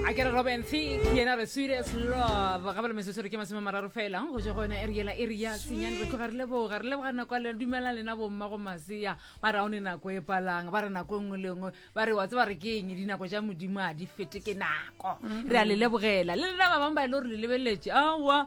a ke re robin thick yena re sweetest love ga bale mesesore ke masome mararo fela go je go yona e re yela e re ya senyane re tloga re leboga re leboga nako le dumelang lena bomma go masea ba re aone nako e palang ba re nako nngwe le nngwe ba re wa tse ba re ke eng dinako ja modimo a di fete ke nako re a le lebogela le lena ba bangwe ba e le gore le lebeletše aowa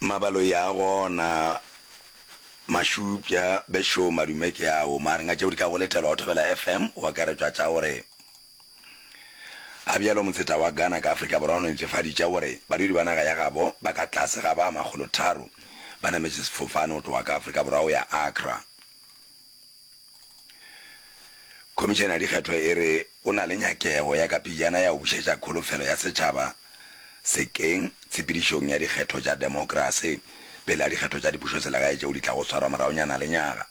Mabalo ya gona Mashupja be show madume ke ao mare nga tšeo di ka go letela wa thobela FM o akaretšwa tša gore a bjalo motseta wa Ghana ka Afrika Borwa o netefaditša gore badudi ba naga ya gabo ba ka tlase ga ba makgolo tharo ba nametše sefofane go tloga ka Afrika Borwa go ya Accra. Khomišene ya Dikgetho e re go na le nyakego ya ka pejana ya go bušetša kholofelo ya setšhaba sekeng tshepedišong ya dikgetho tša demokrase pele ga dikgetho tša dipušoselegae tšeo di tlago swarwa moragonyana le nyaga.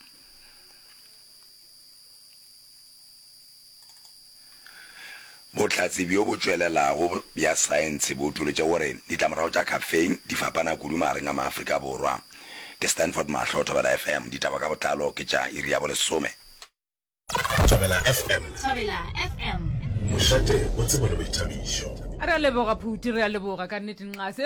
Bohlatse bjo bo tšwelelago bja saense bo utolotše gore ditlamorago tša caffeine di fapana kudu magareng a maAfrika Borwa. Ke Stanford Mahlo, Thobela FM, ditaba ka botlalo ke tša iri ya bolesome. Thobela FM. Thobela FM. Mošate o tsebo le boithabišo. Re a leboga Phuti, re a leboga ka nnete nxase.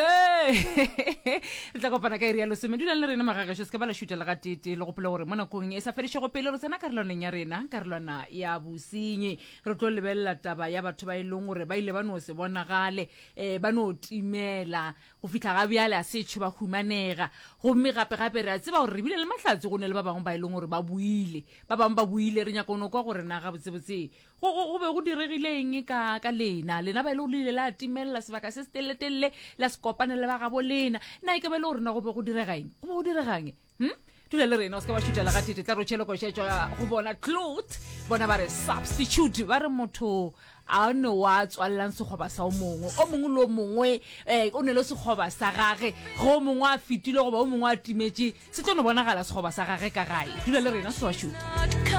Re tla kopana ka iri ya lesome. Dulang le rena magagešo, se ke ba la šutela ga tete. Le gopole gore mo nakong e sa fedišego pele re tsena karolwaneng ya rena, karolwana ya bosenyi. Re tlo lebelela taba ya batho ba e leng gore ba ile ba no se bonagale, um ba no timela go fihla ga bjale, a setšho ba humanega. Gomme gape-gape re a tseba gore re bile le mahlatse, go ne le ba bangwe ba e leng gore ba boile. Ba bangwe ba boile, re nyaka go no kwa gore na gabotsebotse go, go, go be go diregile eng ka, ka lena lena ba e le go le ile la timelela sebaka se se telele-telele la se kopane le ba gabo lena na e ka ba e le go rena go be go direga eng go be go diregang hm dula le rena o se ka wa šutela ga tete tla ro tšhelokošetšwa go bona clot bona ba re substitute ba re motho a ne wa tswalelang sekgoba sa o mongwe o mongwe le o mongwe um o ne le sekgoba sa gage ge o mongwe a fetile goba o mongwe a timetše se tlo no bonagala sekgoba sa gage ka gae dula le rena se wa šuta